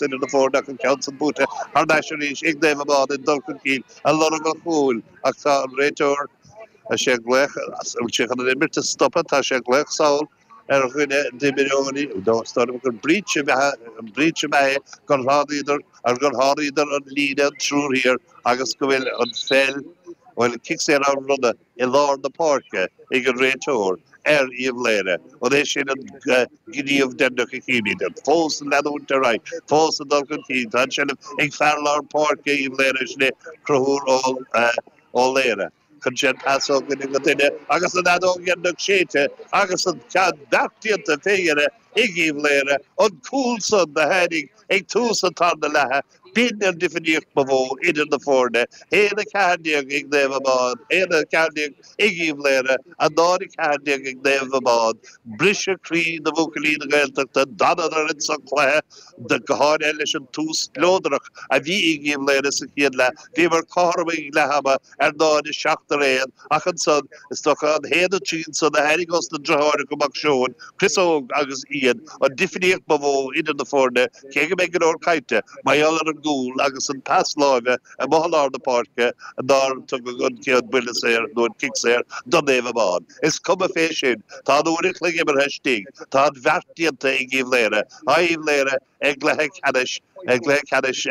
duine de foirne ach an ceann san buaite thar n-ais arís ag Naomh Abán ag dul chun cinn ag lorg an chúil ach tá an réiteoir Tá sé ag glaoch as, an bhfuil sé chun an imirt a stopadh? Tá sé ag glaoch sall ar dhuine d'imreoirí nó is dóigh liom gur breach ab ea, an breach ab ea é gur shlánaíodar ar gur sháraíodar an líne an triúr thiar agus go bhfuil an pheil, bhuel an cic saor á bhronnadh. i lár na páirce ag an réiteoir, ar Uíbh Laoghaire, an é sin an gníomh deireanach a chímíd? Fós ag leanúint ar aghaidh, fós ag dul chun cinn, tá an tseilbh ag fear lár páirce Uíbh Laoghaire, is é Conchúr Ó Laoghaire chun cinn, pas ó dhuine go duine agus an fheadóg dheireanach séidte agus an ceann beart déanta fé dheireadh ag Uíbh Laoghaire, an cúl san a tháinig ag tús an tarna leatha. B'in an difríocht ba mhó idir na foirne, haon a ceathair déag ag Naomh Abán, haon a ceathair déag ag Uíbh Laoghaire, a náid a ceathair déag ag Naomh Abán. Briseadh croí do bhuachaillí na Gaeltachta, d'fhanadar insa chluiche, go háirithe leis an tús spleodrach a bhí ag Uíbh Laoghaire sa chéad leath. Bhíomar cothrom ag leath ama Ar náid a seacht araon, ach ansan, is dócha an haon a trí san a tháinig ós na driotháracha Mac Seoin, Chris Óg agus Ian an difríocht ba mhó idir na foirne, cé go mbeidh go leor cainte, mar gheall ar an gcúl agus an pas láimhe amuigh i lár na páirce nár tugadh an buille saor nó an cic saor do Naomh Abán. Is cuma fé sin, tá an uair a chloig imeartha istigh, tá an bheart déanta ag Uíbh Laoghaire, tá Uíbh Laoghaire i gcluiche ceannais, i gcluiche ceannais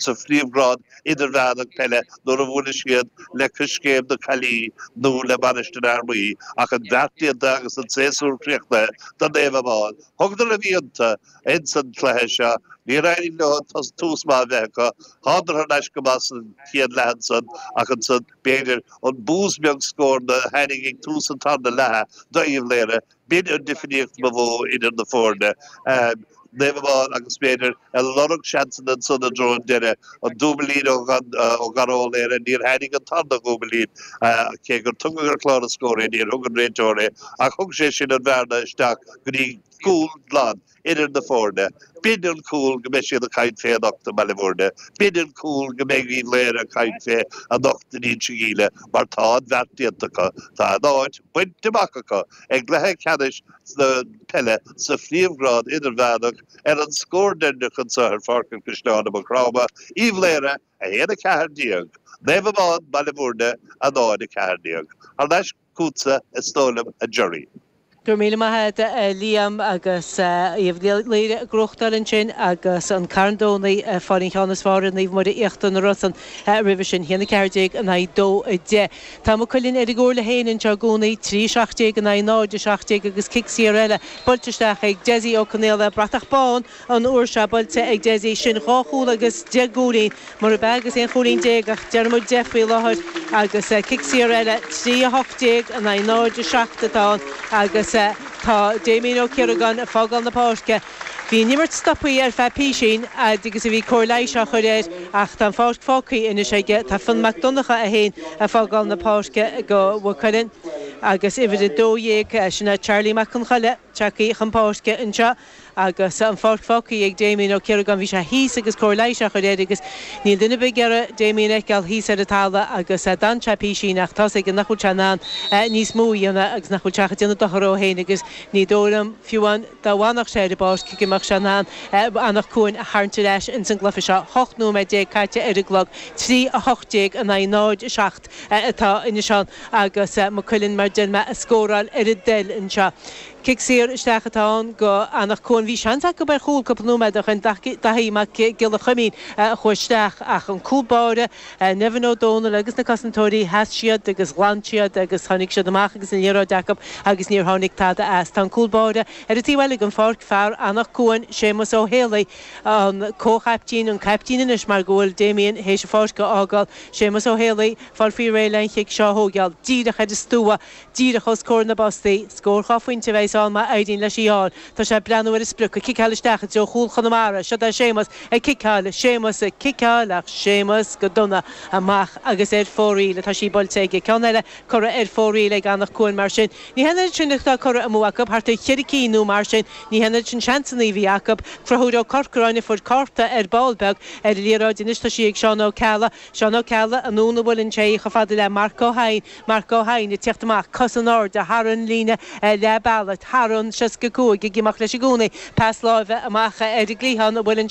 sa phríomhghrád idirmheánach peile nuair a bhuailfidh siad le Coiscéim na Caillí nó le Mainistir Fhear Maí ach an bheart déanta agus an séasúr críochnaithe do Naomh Abán. Thugadar a mbionda ins an cluiche seo. Níor éirigh leo tús maith a bheith acu. Thánadar thar n-ais go maith san chéad leath ansan ach ansan, b'fhéidir, an bús beag scóir do tháinig ag tús an tarna leatha do Uíbh Laoghaire, B'in an difríocht ba mhó idir na foirne, Naomh Abán agus b'fhéidir ag lorg seansanna ansan i dtreo an deireadh. An dúbillín ó Dhara Ó Laoghaire, níor tháinig an tarna dhúbillín, cé gur tugadh ar chlár an scór é, níor thug an réiteoir é, ach thug sé sin an bhearna isteach go dtí cúl glan. idir na foirne. B'in an cúl go mbeidh siad ag caint fé anocht i mBaile Mhúirne. B'in an cúl go mbeidh Uíbh Laoire ag caint fé anocht in Inse Geimhleach mar tá an bheart déanta acu, tá a n-áit bainte amach acu i gcluiche ceannais na peile sa phríomhghrád idirmheánach ar an scór deireanach anso ar Pháirc an Chaisleáin i Maigh Chromtha, Uíbh Laoire 1, 14, Naomh Abán, Baile Mhúirne 0, 14. Thar n-ais go. chugatsa, is dóigh liom, a Jerry. Go raibh míle maith agat, a Liam, agus Uíbh Laoire ag gnóthachtáil ansin, agus an Carn Domhnaigh ag fáil an cheann is fearr ar Naomh Muire Íochtar na Rosann roimhe sin, 1, 14 in aghaidh 2, 10. Tá Maigh Cuilinn ar a gcomhairle féin anseo i gcónaí, 3, 17 in aghaidh 0, 17, agus cic saor eile buailte isteach ag Dessie Ó Conaola, bratach bán! An uair seo, buailte ag Dessie sin dhá chúl agus deich gcúilín, murab ea agus aon chúilín déag ach déarfaidh muid deich faoi láthair agus cic saor eile, trí a hocht déag in aghaidh náid a seacht atá ann agus tá Damien Ó Ciaragáin ag fágáil na páirce. Bhí an imirt stopaithe ar feadh písín fhad agus a bhí cóir leighis á chur air ach tá an pháirc fágthaí anois aige. Tá Fionn Mac Donnacha é féin ag fágáil na páirce go Mhaigh Cuilinn agus uimhir a dó dhéag, sin é Charlie Mac Conchoille, tagthaí chun páirce anseo. Agus an pháirc fágthaí ag Damien Ó Ciaragáin, bhí sé thíos agus cóir leighis á chur air agus níl duine ar bith ag iarraidh Damien a fheiceáil thíos ar an talamh agus d'fhan sé písín ach tá's aige nach bhfuil sé in ann níos mó a dhéanamh agus nach bhfuil sé ach ag déanamh dochar dhó féin agus ní dóigh liom, fiú amháin, dá bhfanfadh sé ar an bpáirc, go mbeadh sé in ann Anach Cuain a tharraingt ar ais ins an gcluife seo. 18 nóiméad caite ar an gclog, 3, 18 in aghaidh 0, 7 atá anois ann agus Maigh Cuilinn, mar a deir mé, ag scóráil ar a dtoil anseo. Cic saor isteach atá ann go Anach Cuain. Bhí seans acu ar chúl cúpla nóiméad ó shin, Daithí Mac Giolla Chuimín a chuaigh isteach ach an cúl báire, Nevin Ó Dónaill agus na cosantóirí, sheas siad agus ghlan siad agus tháinig siad amach agus an liathróid acu agus níor tháinig tada as. Tá an cúl báire ar an taobh eile den pháirc, fear Anach Cuain, Séamus Ó hÉalaí, an comhchaiptín, an caiptín anois mar go bhfuil Damien théis an pháirc a fhágáil. Séamus Ó hÉalaí, fáil faoi réir le an chic seo a thóigeáil díreach ar an stua. díreach os comhair na bpostaí. Scór dhá phointe a bheidh ann má éiríonn leis í fháil. Tá sé ag breathnú ar an sprioc, ag ciceáil isteach i dtreo chúl Chonamara. Seoid é Séamus, ag ciceáil, Séamus ag ciceáil ach Séamus go dona. Amach agus ar fóraoil atá sí buailte aige. Ceann eile curtha ar fóraoil ag Anach Cuain mar sin. Ní hé an oiread sin atá curtha amú acu, thart ar cheithre cinn nó mar sin. Ní hé an oiread sin seansanna a bhí acu. Conchúr Ó Corcoráin a fuair cárta ar ball beag ar an liathróid. Anois tá sí ag Seán Ó Ceallaigh. Seán Ó Ceallaigh, anonn a bhuaileann sé í, chomh fada le Marc Ó hEidhin. Marc Ó hEidhin ag teacht amach, cos in airde, thar an líne leathbealaigh, thar an 65, ag imeacht leis i gcónaí, pas láimhe amach ar an gcliathán a bhfuil an.